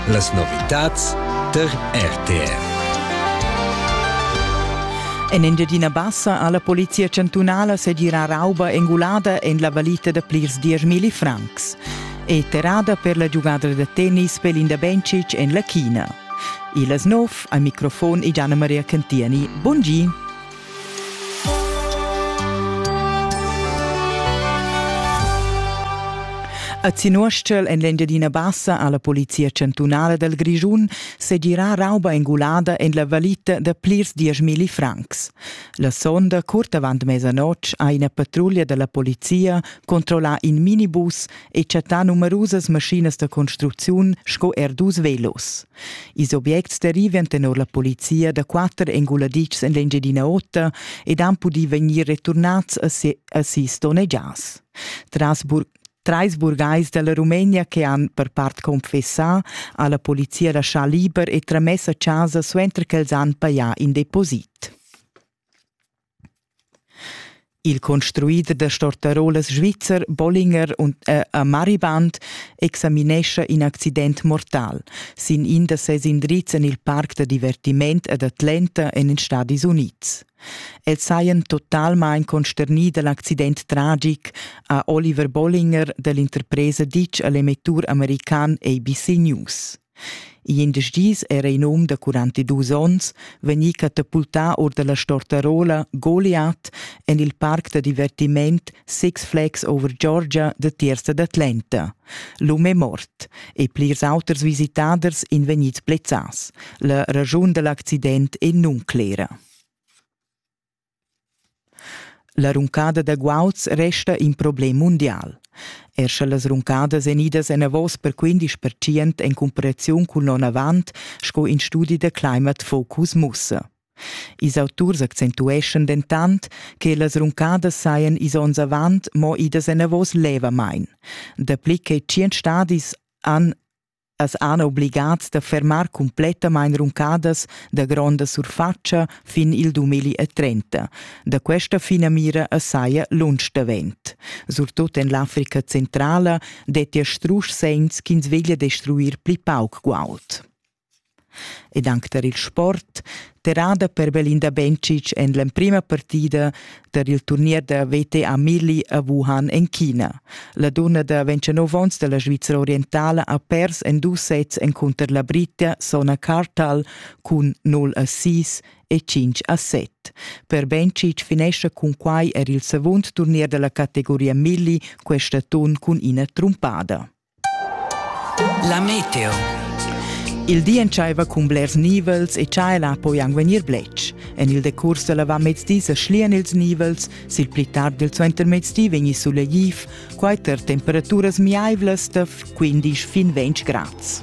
Las novitads tar RTR. En Engiadina Bassa ha la polizia chantunala segirà rauba engulada en la valita da plirs dieschmilli francs. È terrada per la giugada da tennis Pelinda Bencic en la China. Il Asnov, al microfon è Gianna Maria Cantiani. Bun gi! A Zinuostgel en l'Engiadina Bassa ha la polizia chantunala dal Grischun segirà rauba engulada en la valita da plirs dieschmilli francs. La sonda curt avant mesanotg ha ina patruglia da la polizia controllà in minibus e chattà numerusas maschinas da construcziun sco er dus velos. Ils objects derivan tenor la polizia da quatter enguladitschs en l'Engiadina Ota ed han pudì vegnir returnats a sis donnegias. Tras Trais burgais da la Rumenia che han per part confessà ha la polizia laschà liber e tramess a chasa suenter ch'els han pajà in deposit. Il construider da stortarolas svizzer Bollinger und äh, a Mariband examinescha in accident mortal sin in da ses indrizs en il parc da divertiment ad Atlanta en ils Stadis Unids. Els sajan totalmain consternì da l'accident tragic, ha Oliver Bollinger dall'interpresa ditg a l'emettur american ABC News. Igl indesch dis era in um da quarantadus onns vegnì catapultà or da la Stortarola Goliath en il parc da divertiment Six Flags Over Georgia da Tiersa d'Atlanta. L'um è mort e plirs auters visitaders èn vegnids blezzads. La raschun da l'accident è nunclera. La runcada da guauds resta in problem mundial. Er sche las runcadas èn idas enavos per quindisch percent en cumparaziun cun l'onn avant, sco in studi da Climate Focus mussa. Ils auturs accentueschan dentant che las runcadas sajan is onns avant mo idas enavos levamain. Dapli che tschient stadis han As han obligats da fermar cumplettamain runcadas da gronda surfatscha fin il 2030. Da questa finamira as saja lunsch davent. Surtut en l'Africa centrala dettia strusch segns ch'ins veglia destruir pli pauc guaud. ed anc tar il sport, terrada per Belinda Bencic en l'emprima partida tar il turnier da VTA Milli a Wuhan en China. La dunna da 29 onns da la Svizra orientala ha pers en dus sets encunter la Britta Sona Kartal cun 0 a 6 e 5 a 7. Per Bencic finescha cun quai er il secund turnier da la categoria Milli questa atun cun ina trumpada. La meteo. Il di entschaiva cun blers nivels e tschaiela poi anc vegnir bletsch. En il decurs da l'avamezdi sa schlian ils nivels, sil pli tard il suentermezdi vegni sulegliv, quai tar temperaturas miaivlas da quindisch fin ventg grads.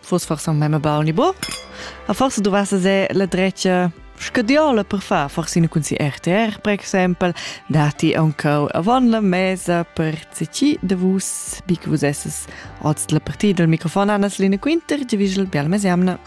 fosse forse même baul ni bo a forse dovesse se la drecia scadiola per far forse in cun si RTR per exempel dati ancau avon la mesa per ci de vus bi che vus esses oz la partida del microfon Anna Selina Quinter, Givischel Bialmesiamna.